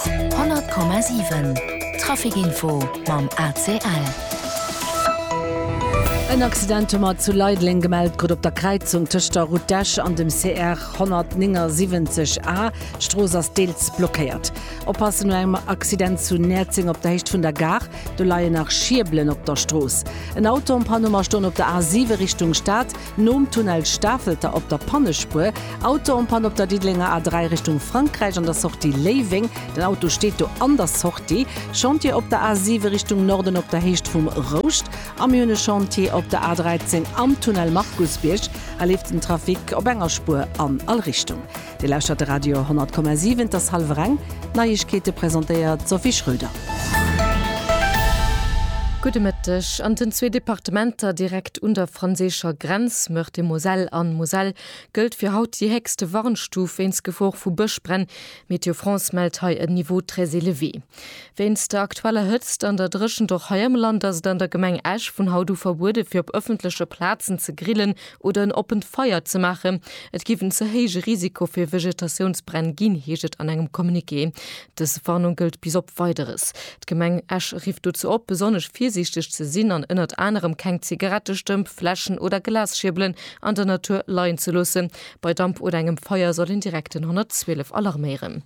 100,7 Trafic Info mam ACL. En Accident hu mer zu Leideleng gemellt krut op der Kräizung tëscht der Route d'Esch an dem CR 179 A. D'Strooss ass deels blockéiert. Oppassen no engem Accident zu Näerzeng op der Héicht vun der Gare. Do leien nach Schierbelen op der Strooss. En Auto en Panne hu mer stoen op der A 7 Richtung Stad. Nom Tunnel Stafelter op der Pannespuer, Auto en panne op der Diddelenger A3 Richtung Frankräich an der Sortie Léiweng, den Auto steet do an der Sortie, Chantier op der A7 Richtung Norden op der Héicht vum Rouscht a mir hunn e Chantier op der A13 am Tunnel Markusbierg. Hei leeft den Trafic op enger Spuer an all Richtung. Dir lauschtert de Radio 10,7, et ass hallwer eng. D'Neiegkeete presentéiert d'Sophie Schröder. Gudde Mëtteg. An den zwee Departementer direkt un der franséischer Grenz, Meurthe-et-Moselle an Moselle, gëllt fir haut déi héchste Warnstuf wéinst Gefor vu Bëschbränn. Météo France mellt hei en Niveau très élevé. Wéinst der aktueller Hëtzt an der Dréchent och hei am Land ass et an der Gemeng Esch vun haut u verbuede fir op ëffentleche Plazen ze grillen, oder en oppent Feier ze maachen. Et géif en ze héije Risiko fir Vegetatiounsbränn ginn, heescht et an engem Communiqué. Dës Warnung gëllt bis op Weideres. D'Gemeng Esch rifft dozou op, besonnesch virsiichteg ze sinn an ënnert anerem keng Zigarettestëmp, Fläschen oder Glasschierbelen an der Natur leien ze loossen. Bei Damp oder engem Feier soll een direkt den 112 alarméieren.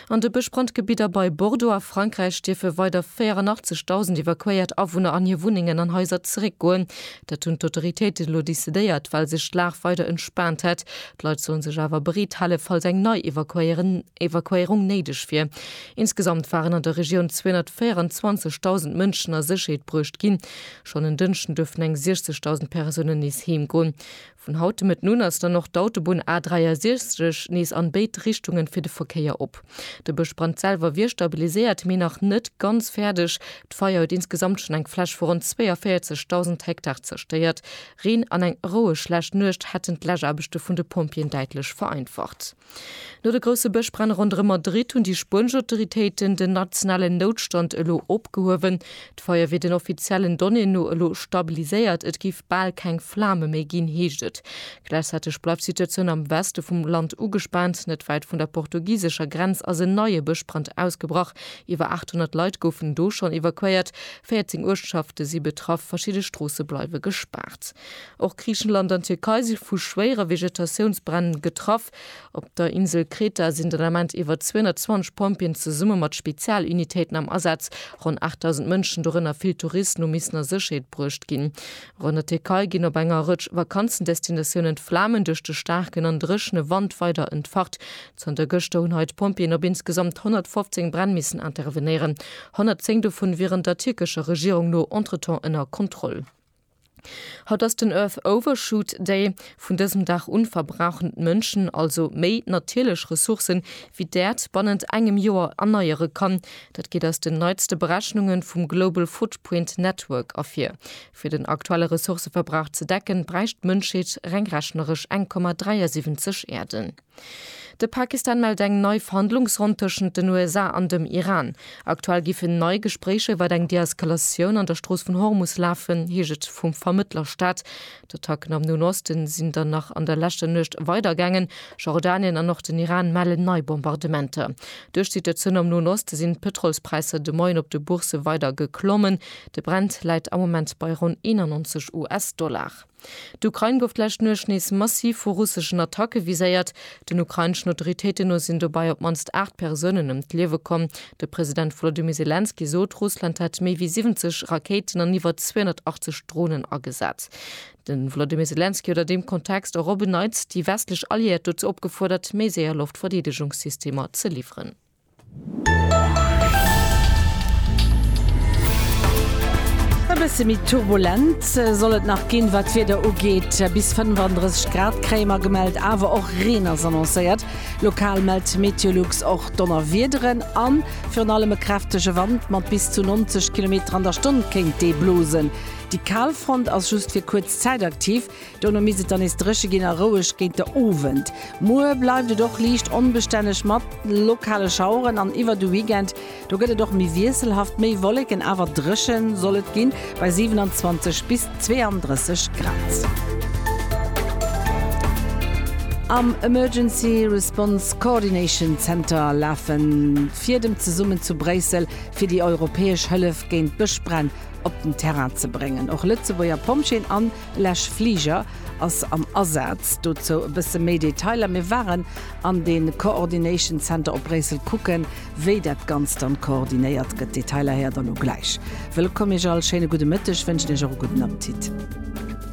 An de Bëschbrand Gebidder bei Bordeaux a Frankräich dierfe weider 84.000 evakuéiert Awunner an hir Wunnengen an Haiser zeréckgoen. Dat hunn d'Autoritéiten elo decidéiert, well sech d'Lag weider entspaant hätt. D'Leit sollen sech awer bereet hale falls eng nei Evakuéierung néideg wier. Insgesamt waren an der Regioun 224.000 Mënschen a Sécherheet bruecht ginn. Schonn en Dënschden duerften eng 60.000 Persounen nees heem goen. Vun haut de Mëtten un ass dann och d'Autobunn A 63 nees an béid Richtunge fir de Verkéier op. De Bëschbrand selwer wier stabiliséiert, mee nach net ganz fäerdeg. D'Feier huet insgesamt schonn eng Fläch vu ronn 42.000 Hektar zerstéiert. Reen an eng roueg lescht Nuecht hätten d'Läschaarbechte vun de Pompjeeën däitlech vereinfacht. No de grousse Bëschbränn ronderëm Madrid hunn déi spuenesch Autoritéiten den nationalen Noutstand elo opgehuewen. D'Feier wier den offiziellen Donnéeën no elo stabiliséiert, et géif bal keng Flame méi ginn, heescht et. Gläichzäiteg bleift d'Situatioun am Weste vum Land ugespaant. Net wäit vun der portugisescher Grenz ass en neie Bëschbrand ausgebrach. Iwwer 800 Leit goufen do schonn evakuéiert, 14 Uertschafte si betraff, verschidde Stroosse bleiwe gespaart. Och Griichenland an d'Tierkei si vu schwéiere Vegetatiounsbränn getraff. Op der Insel Kreta sinn den Ament iwwer 220 Pompjeeën zesumme mat Spezialunitéiten am Asaz. Ronn 8.000 Mënschen, dorënner vill Touristen, hu missen a Sécherheet bruecht ginn. Och an der Tierkei ginn op enger Rëtsch Vakanzendestinatiounen d'Flamen duerch de staarken an dréchene Wand weider entfacht. Zanter gëschter hunn hei d'Pompjeeën op insgesamt 115 Bränn missen intervenéieren. 110 dovun wieren der tierkescher Regierung no entretemps ënner Kontroll. Haut ass den Earth Overshoot Day. Vun dësem Dag un verbrauchen d'Mënschen also méi natierlech Ressourcen, wéi d'Äerd bannent engem Joer erneiere kann. Dat geet aus den neitste Berechnunge vum Global Footprint Network ervir. Fir den aktuelle Ressourceverbrauch ze decken, bräicht d'Mënschheet reng rechneresch 1,73 Äerden. De Pakistan mellt eng nei Verhandlungsronn tëschent den USA an dem Iran. Aktuell giffen nei Gespréicher iwwer eng Deeskalatioun an der Strooss vun Hormus lafen, heescht et vum Vermëttlerstat. D'Attacken am Noen Oste sinn dann nach an der leschter Nuecht weidergaangen. Jordanien an och den Iran mellen nei Bombardementer. Duerch d'Situatioun am Noen Oste sinn d'Pëtrolspräisser de Moien op de Boursë weider geklommen. De Brent läit am Moment bei ronn 91 US-Dollar. D'Ukrain gouf d'lescht Nuecht nees massiv vu russeschen Attacke viséiert. Den ukraineschen Autoritéiten no sinn dobei op d'mannst 8 Persounen ëm d'Liewe komm. De President Wolodymyr Selenskyj sot, Russland hätt méi wéi 70 Rakéiten an iwwer 280 Dronen agesat. De Wolodymyr Selenskyj huet a deem Kontext och op en Neits déi westlech Alliéiert dozou opgefuerdert, méi séier Loftverdeedegungssystemer ze liwweren. E bësse méi turbulent soll et nach ginn, wat d'Wieder ugeet. Bis 35 Grad kréie mer gemellt, awer och Reen ass annoncéiert. Lokal mellt Meteolux och Donnerwiederen a virun allem e kräftege Wand mat bis zu 90 Kilometer an der Stonn kéint dee blosen. Déi kal Front ass just fir kuerz Zäit aktiv. Dono misst et dann nees dréche ginn a roueg géint de Owend. Muer bleift et och liicht onbestänneg mat lokale Schaueren an iwwer de Weekend do gëtt et och méi wiesselhaft, méi Wolleken, awer dréche soll et ginn bei 27 bis 32 Grad. Am Emergency Response Coordination Center lafe Fiedem zesummen zu Bréissel, fir déi europäesch Hëllef géint Bëschbränn op den Terrain ze bréngen. Och Lëtzebuerger Pompjeeën an. Lech Fliger ass am Asaz. Dozou e bësse méi Detailer, Mir waren an de Coordination Center op Bréissel kucken, wéi dat Ganzt dann koordinéiert gëtt. Detailer héiert der lo gläich. Wëllkomm Iech all, schéine gudde Mëtteg wënschen Iech och e gudden Appetit.